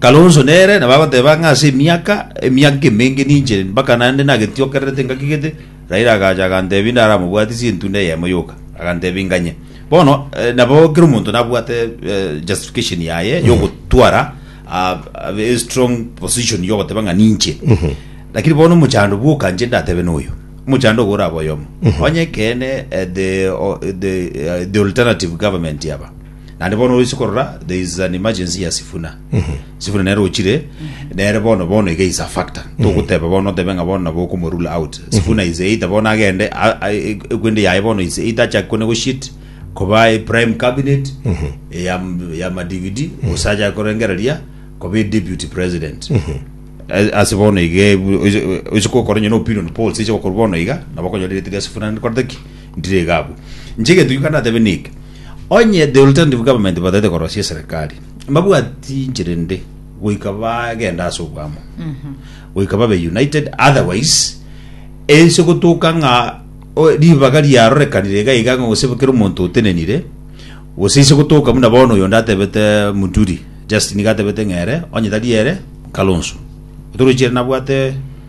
Kalonzo nere nabo agoteba ng'a ase emiaka emiaka emenge ninche mpaka naende nagetiokererete ngaki gete, Raila agacha agantebia inde aramobwatie ase entunda eyemo yoka, agantebia inganye. Bono eh, nabo kera omonto nabwate eh, justification yaye yogotwara ah, a very strong position yogoteba ng'a ninche lakini bono omochando bwoka nche ndatebe noyo omochando ogo orabe oyomo onye kene eh, the, o- the, eh, the alternative government yaba naende bono oise korora there is an emergency ya sifuna sifuna nere ochire nere bono bono iga is a factor togoteba bono otebe ng'a bono nabo okomo rule out sifuna is either bono agende a- a- e- ekwende yaye bono is either achake konegotiate koba e prime cabinet ya ya madividi gose achake korengereria koba e deputy president A- ase bono iga ebu- oise- oise kokora onye na opinion polls eche gokorwa bono iga nabo okonyora erioto ria sifuna nkorete ki ntire iga abwo inche egento gioka ndatebe niki Onye the alternative government bataete korosia eserekari, mbabwati inchera ende goika bagende ase obwamo goika babe united otherwise ense gotoka ng'a o, ribaga riarorekanire iga iga ng'a gose kera omonto otenenire gose ise gotoka buna bono oyonde atebete muturi Justin iga atebete ng'a ere onye tari ere kalonso otorochi ere nabwate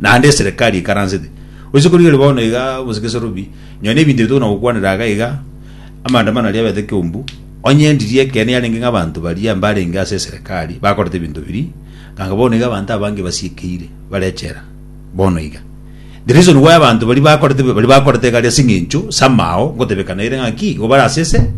Naende eserekari eikaransete. Risiku riria bono iga bosa gesarubi, nonya na ebinto ebitogena gokwanera iga iga, amaandamano aria abete ekeumbu, onye ndiria ekeene yarenge ng'a abanto baria mbarenge ase eserekari bakorete ebinto biria, ganga bono iga abanto abange basiekeire bare echela. Bono iga, the reason why abanto baria bakorete baria bakorete iga aria ase eng'encho samao ngotebekana ere ng'a ki, igo bare ase ese.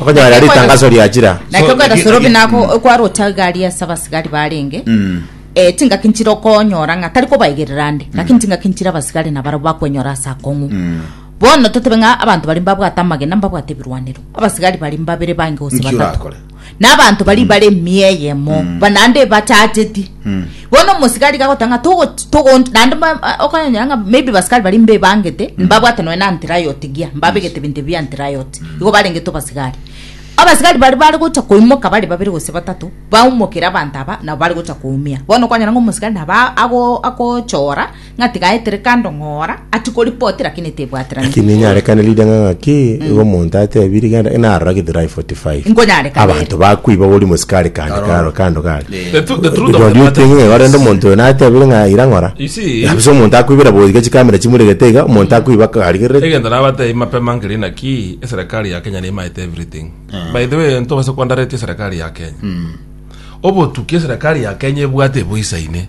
Okonyora ritangaso riachira. Naki okogenda sorobi nako okwarocha egari ase abasigari barenge Mm. eh, chingaki nchire okonyora ng'a tari kobaigerera ande ngaki nchingaki nchire abasigari nabaro bakwenyora ase akong'u bono totebe ng'a abanto bari mbabwate amagena mbabwate ebirwanero abasigari bari mbabere bange gose Nki batatu orakore? na abanto bari bare emiya eyemo banande bachacheti Bono omosigari gagoteba ng'a togot- togonti naende mba- a- okonyora ng'a maybe basikari baria mbebangete mbabwate nonya na antirayoti ngiya mbabegete ebinto ebio bia antirayoti igo barengete abasigari abasigari baria bare gocha koimoka bare babere gose batato baumokere abanto aba nabo bare gocha koumia bono okonyora ng'a omosigari nabo a- ago- agochora. Ng'a tigaetere kando ng'ora ati koripoti lakini tebwaterani. Lakini inyarekane ridang'a ng'aki, igo omonto atebi rigenda, ng'a narora Githurai 45. Nkonyarekana ere. Abanto bakwiba bori mosikari kande karo kando kare. The tru- the truth of Don't the you matter think is ng'a rende this. omonto oyo natebire ng'a ira ng'ora? You see- Nabo ase omonto akwibera boigo iga chikamera chimuregete iga, omonto akwiba karigereti. egento nabatebi mapema nkeri naki eserekari ya kenya nimaete everything by the way ntobase kwandaretie eserekari ya kenya obotuki eserekari ya kenya ebwate eboisaine